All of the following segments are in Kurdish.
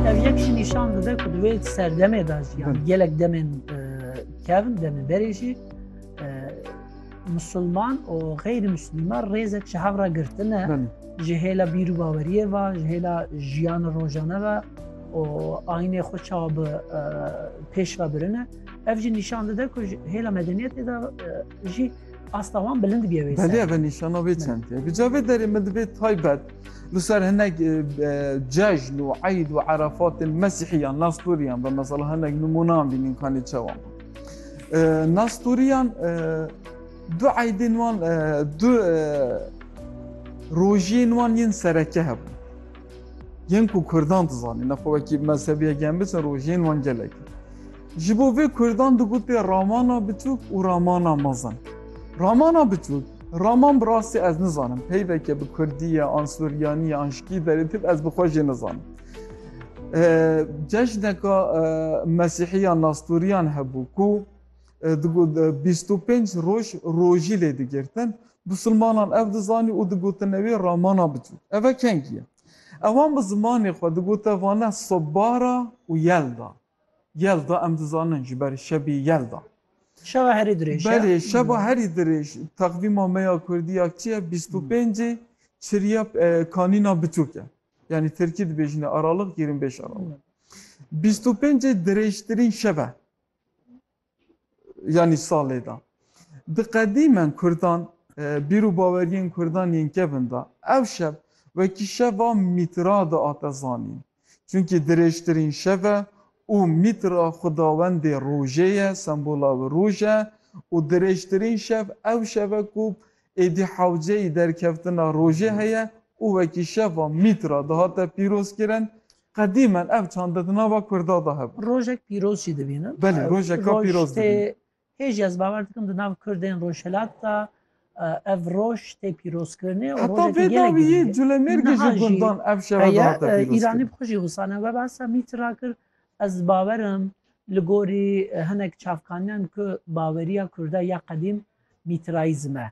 Ev yek jî nîşan dide ku di wê serdemê de jî yani gelek demên kevin demê berê jî musulman û xeyrî muslîman rêzek ji hev re girtine ji hêla bîr û baweriyê ve ji hêla jiyana rojane ve û aynê xwe çawa bi pêş ve birine ev jî nîşan dide ku hêla medeniyetê de jî Asta wan bilind bîye wê ser. Belê ve nîşana wê çend ye. Bi ca vê derê min divê taybet li ser hinek e, cejn û eyd û erefatên mesîhiyan, nastûriyan ve mesela hinek nimûnan bînin kanê çawa. E, nastûriyan e, du eydên wan du rojiyên wan yên sereke hebûn. Yên ku Kurdan dizanîn, nexwe wekî mezhebiyek yan biçin rojiyên wan gelek. Ji bo vê Kurdan digotê ramana bitûk û ramana mezin. Ramana bitûk, Raman bi rastî ez nizanim peyveke bi Kurdî ye an Suryanî ye an ji kî derê tê ez bi xwe jê nizanim. Cejneka Mesîhiyan Nastoriyan hebû ku digot bîst û pênc roj rojî lê digirtin. Musulmanan ev dizanî û digotine wê ramana bitûk. Eve kengî ye. Ewan bi zimanê xwe digote vane sobbara û yelda. Yelda em dizanin ji ber şebî yelda. Şeva herî dirêj ya. Belê şeva herî dirêj. Teqvîma me ya kurdî ya çi ye? Bîst û pêncê çiriya kanîna biçûk e. Yanî tirkî dibêjine aralix yirmi beş aralix. Bîst û pêncê dirêjtirîn şev e. yanî salê de. Di qedîmen kurdan bîr û baweriyên kurdan yên kevn de. Ev şev wekî şeva Mîtra diate zanîn. Çunkî dirêjtirîn şev e û Mîtra xwedawendê rojê ye, sembola wê roj e û dirêjtirîn şev ew şev e ku êdî hewceyî derkeftina rojê heye û wekî şeva Mîtra dihate pîrozkirin. Qedîmen ev çande di nava Kurda de hebû. Rojek pîroz jî dibînim. Belê, rojeka pîroz dibînim. Hêjî ez bawer dikim di nav Kurdên Rojhilat de ev roj tê pîrozkirinê û rojekî gelek girîng e. Heta vê dawiyê Culemêrgê ji gundan ev şeve dihate pîrozkirin. Heye, Îranî bi xwe jî wisa ne. We behsa mîtir re kir, ez di bawer im li gorî hinek çavkaniyan ku baweriya Kurda ya qedîm mîtirayîzm e.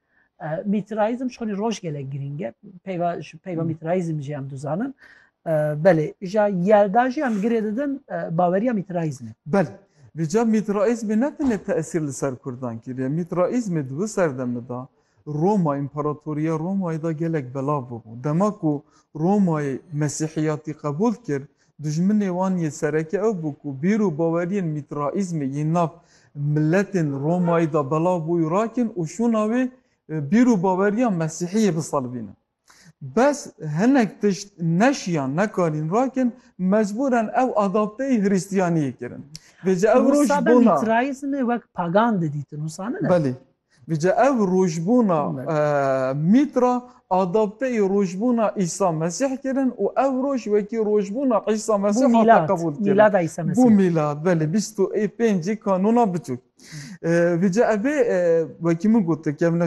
Mîtrayîzm ji xwedî roj gelek girîng e. Peyva ji peyva mîtrayîzm jî em dizanin. Belê ja yerda jî em girê didin baweriya mîtrayîzmê. Belê. Li ca mîtrayîzmê ne tenê tesîr li ser kurdan kiriye. Mîtrayîzmê di wê serdemê de Roma, Împaratoriya Romayê de gelek belav bûbû. Dema ku Romayê mesîhiyatî qebûl kir, Dijminê wan yên sereke ew bû ku bîr û baweriyên Mîtraîzmê yên nav miletên Romayî de belav bû û rakin û şûna wê bîr û baweriya Mesîhiyê bisalvîne. Bes hinek tişt neşiyan, nekarîn rakin, mecbûren ew adapteyî Hristiyaniyê kirin. Vêca ew roj Wisa be bona. Mîtraîzmê wek pagan didîtin, wisa ne ne? Belê. Bije ev rojbûna mîtra adapteyî rojbûna Îsa Mesîh kirin û ev roj wekî rojbûna Îsa Mesîh hate qebûl kirin. Bû mîlad. Mîlada Îsa Mesîh. Bû mîlad belê bîst û pêncî kanûna biçûk. Bije ev ê wekî min got